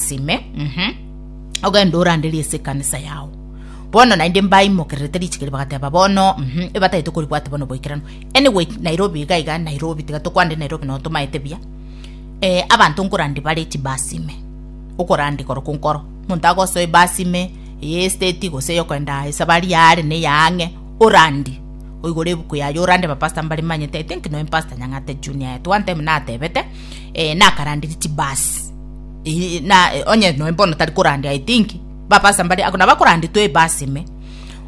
Sime, mhm, ogende oranderie ase ekanisa yao. Bono naende mbaimokererete richiko erio bagateba bono, mhm, ebatagete koribwate bono oboikeranu. Anyway, Nairobi iga iga, Nairobi, tiga tokwande Nairobi nonye tomaete buya. Eh, abanto nkorandia bare chibasi ime, okorandia korokwa nkoro. Omonto agosoe ebasi ime, eye estate gose eyokogenda esabari yaare na eya ang'e, orandie, oigore ebuku yaye orande abapastor mbare mbanyete, I think nonya Pastor Nyang'ata Junior yetwe one time natebete, eh, nakaranderia chibasi. Ih, na eh, onye noe mbono tari korandia i think bapasa mbari ako nabo akoranditwe ebasi ime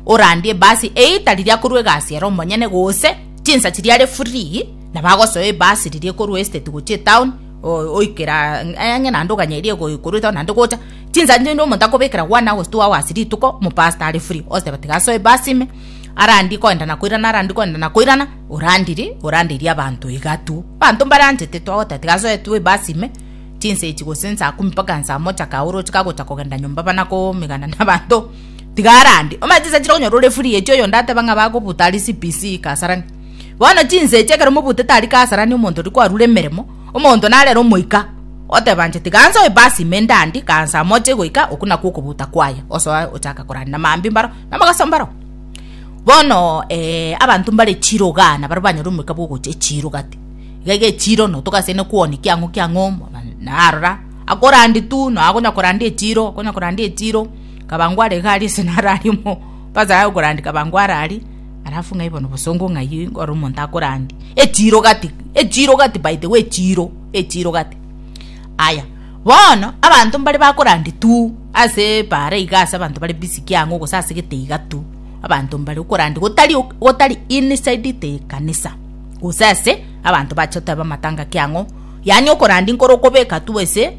orandie ebasi eye tari riakorwa egasi ere omonyene gose chinsa chiria are free na bagosoa ebasi riria ekorwa estate gochia etown o- oikera ng- eh, ng'e naende oganyeria ego- ekorwa etown naende gocha chinsa chinde omonto akobekera one hours two hours rituko omopasta are free ogosaba tiga asoe ebasi ime arandie koenda na koirana arandie koenda na koirana orandiri orandeiri abanto iga tu abanto mbaranchete twagoteba tiga asoe tu ebasi ime Chinsa echi gose nsaa kumi mpaka nsaa mocha kaa oroche kagocha kogenda nyomba bana komegana na abanto tiga arande omanye chinsa chire konyora ore free echi oyonde ateba ng'a bagobuta aria CBC Kasarani bono chinsa echi ekero mobutete aria Kasarani omonto oria kwarure emeremo omonto narere omoika oteba inche tiga nsoe ebasi ime ndande kaa nsaa mocha egoika okwo nakwo okobuta kwaye osoe ochake koranda na mambia mbaro na mogaso mbaro bono abanto mbare chirogaa nabaria banyore omoika bwa ogocha echiroga te. iga egechiiro no togasaine kwonia kiang'o kiang'o na arora akorandi tu no akonya korandi echiiro akonya korandi echiiro kabango are iga aria ase naro aria omo basa aye korandi kabango are aria alafu ng'ai bono bosongo ng'ai ore omonto akorandi echiiro gati echiiro gati by the way echiiro echiiro gati aya bono abanto mbare bakorandi tu ase bare iga ase abanto bare busy kiang'o gose ase gete iga tu abanto mbare okorandi gotari gotari inside the ekanisa. gose ase abanto bache oteba amatanga ki ang'o yaani okorandi nkoro okobeka tu ase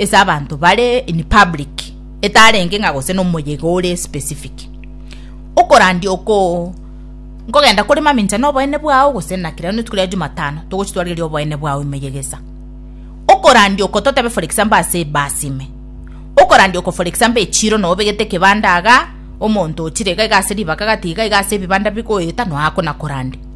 ase abanto bare in public etarenge ng'a gose nomoyega ore specific okorandi oko nkogenda kore mamincha na oboene bwao gose na kira rituko ria jumatano togochitwarereri oboene bwao emeyega esa okorandi oko totebe for example ase ebasi ime okorandi oko for example echiro noo obegete ekebanda igaa omonto ochire iga iga ase ribaga gati iga iga ase ebibanda bigoeta noe akona korande.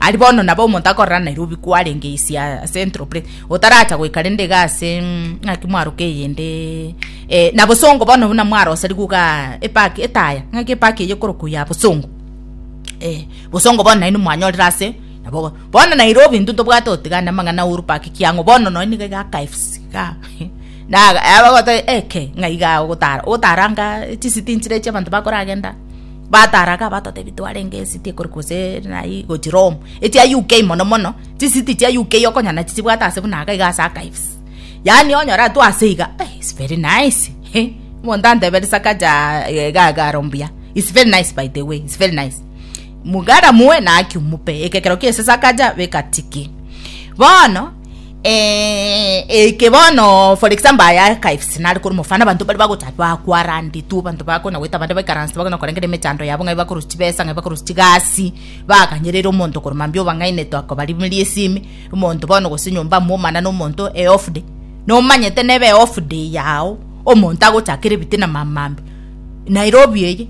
Aria bono nabo omonto akorora Nairobi kwarenge ise aa Central Place otaracha goika rende iga ase mm, ng'aki mwaroka eyende eh, na bosongo bono buna mwarosarigwe iga epaki etaya ng'aki epaki eye ekorokwa ya bosongo eh, bosongo bono naino mwanyorire ase nabo bono Nairobi intwe tobwate otigana amang'ana a Uhuru Park kiang'o bono nonya niga iga KFC iga na abagotari eke ng'a iga ogotara ogotaranga chisiti nchire echi abanto bakoragenda Bataraga abatotebia twarenge ecity ekorwa gose naye gochia Rome echia UK mono mono chisity chia UK okonyora chichibwate ase buna iga ase archives yaani onyore atwo ase iga eh is very nice eh omonto antebere Sakaja egagaro mbuya is very nice by the way is very nice mugara moe naki omobe ekekero kia ase Sakaja beka tiki bono. Eh, eke bono for example aya archives nare kore mofano abanto bari bagocha bakwarandetwe abanto bakona goeta abande baikaranse bakona korengera emechando yabo ng'ai bakorusia chibesa ng'ai bakorusia chigasi baganyerera omonto kore mambia obang'ainete akobarimeria esimi omonto bono gose nyomba momana na omonto e off day nomanyete nebe off day yao omonto agochakera ebitina mambia Nairobi eye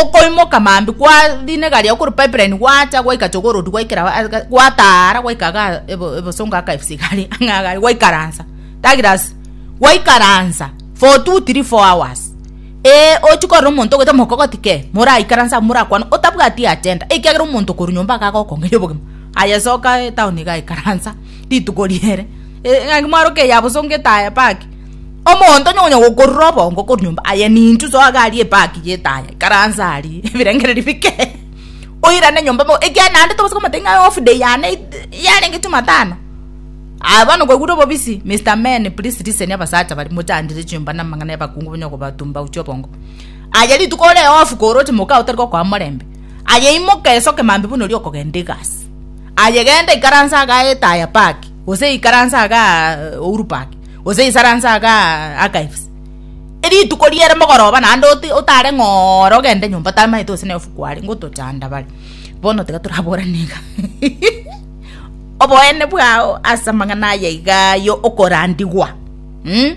okoimoka mambia kwa rinega riago korwa pipeline gwacha gwaika jogoo road gwaikera gwataa ara gwaika igaa ebosongo aka efisi igare ng'a iga gwaikaransa douglas gwaikaransa for two three four hours eeh ochi korora omonto ogoita mogokogoti kee moraikaranse abwo morakwane otabwati agenda ekiagera omonto korwa nyomba iga agokong'eria obogima aye soka etown iga ikaransa rituko riere ng'a mwaruka eyabosongo etaya park. Omonto onye onya gokorora obongo korwa nyomba aye nintwe soa iga aria epaki yetaya ikaranse aria ebirengereri bike oirane nyomba bo ekiagera naende tobasa komotebia ng'a off day yane yarenge jumatano aye bono kwaigure obobisi Mister Men please listen abasacha baria mochandire chinyomba na amang'ana ya abakungu bonya okobatumba gochia obongo aye rituko ore off koroche moka aye otari gokoa morembe aye imoka esoke mambia buna oria okogenda egasi aye genda ikaranse iga etaya paki gose ikaranse igaa Uhuru park. Gose isaranse aga archives. Erituko riere mogoroba naende otare ng'oore ogende nyomba tamaete gose na ofuku are ngotochanda bare. Bono tiga toraborane iga. Oboene bwao ase amang'ana aya iga ayo okorandigwa. Mm?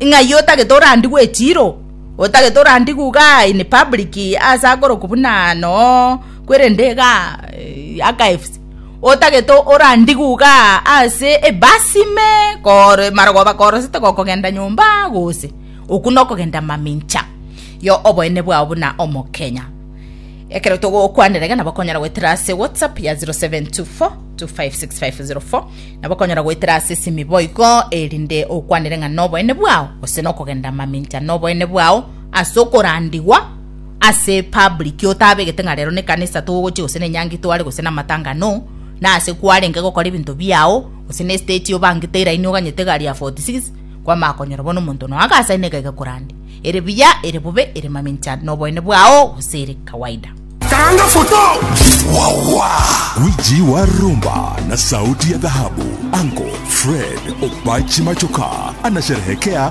Ng'ai otagete orandigwe echiro? Otagete orandigwe iga in public ase akorokwa buna no kwerende iga eh, archives. otagete orandigwe iga ase ebasi ime kore marogoba korosete gokogenda nyomba gose okwo nokogenda mamincha yo oboene bwao buna omokenya ekero togokwanera iga nabo okonyara goetera ase whatsapp ya 0724256504 nabo okonyara goetera ase esimi boigo erinde okwanere ng'a noboene bwao gose nokogenda mamincha noboene bwao ase okorandigwa ase public otabegete ng'a rero nekanisa togochia gose nenyangi tware gose namatanga no nase kwarenge gokora ebinto biao gose ne state obangete eraini oganyete egari ya 46 kwamanya konyora bono omonto nonya agasaina iga iga korande ere buya ere bobe ere mamincha noboene bwao gose ere kawaida. Karanga foto. Wawa! Wiji wa rumba na sauti ya dhahabu, Uncle Fred Opachi Machoka anasherehekea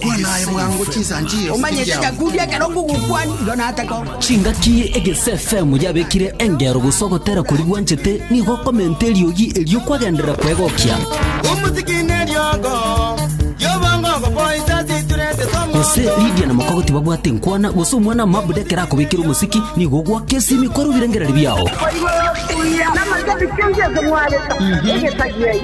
Kwana aye bwango chinsanchio. Omanyete Nyakundi ekero ngogokwani, igo nataka omo. Chingaki egese FM yabekire engero gose ogotera kori gwanchete nigo okomenta eriogi erio kwagenderera kwegokia. Omosiki neriogo riobongo ogopoisa siturete somo. Gose Lydia na Moko tibabwate enkwana gose omwana mabuda ekero akobekire omosiki nigo ogwaka esimi kore obirengereri biao. Namanya bikengeso mwareta egesagiai.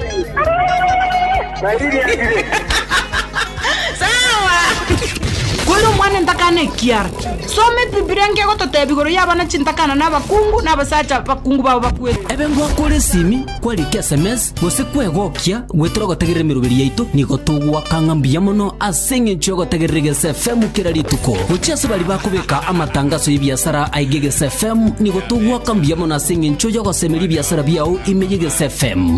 Kore omwana entakana ekiara. Soma Ebibilia nkegototeba igoro y'abana chintakana na abakungu na abasacha bakungu babo bakwete. Ebe ngwakore esimi, kwarike esemesi, gose kwegokia, gwetere ogotegerera emeroberi yaito, nigo togoaka ng'a mbuya mono ase eng'encho y'ogotegerera Egeesa FM kera rituko. Gochia ase baria bakobeka amatangaso y'ebiasara aige Egeesa FM, nigo togoaka mbuya mono ase eng'encho y'ogosemeria ebiasara biao ime y'Egeesa FM.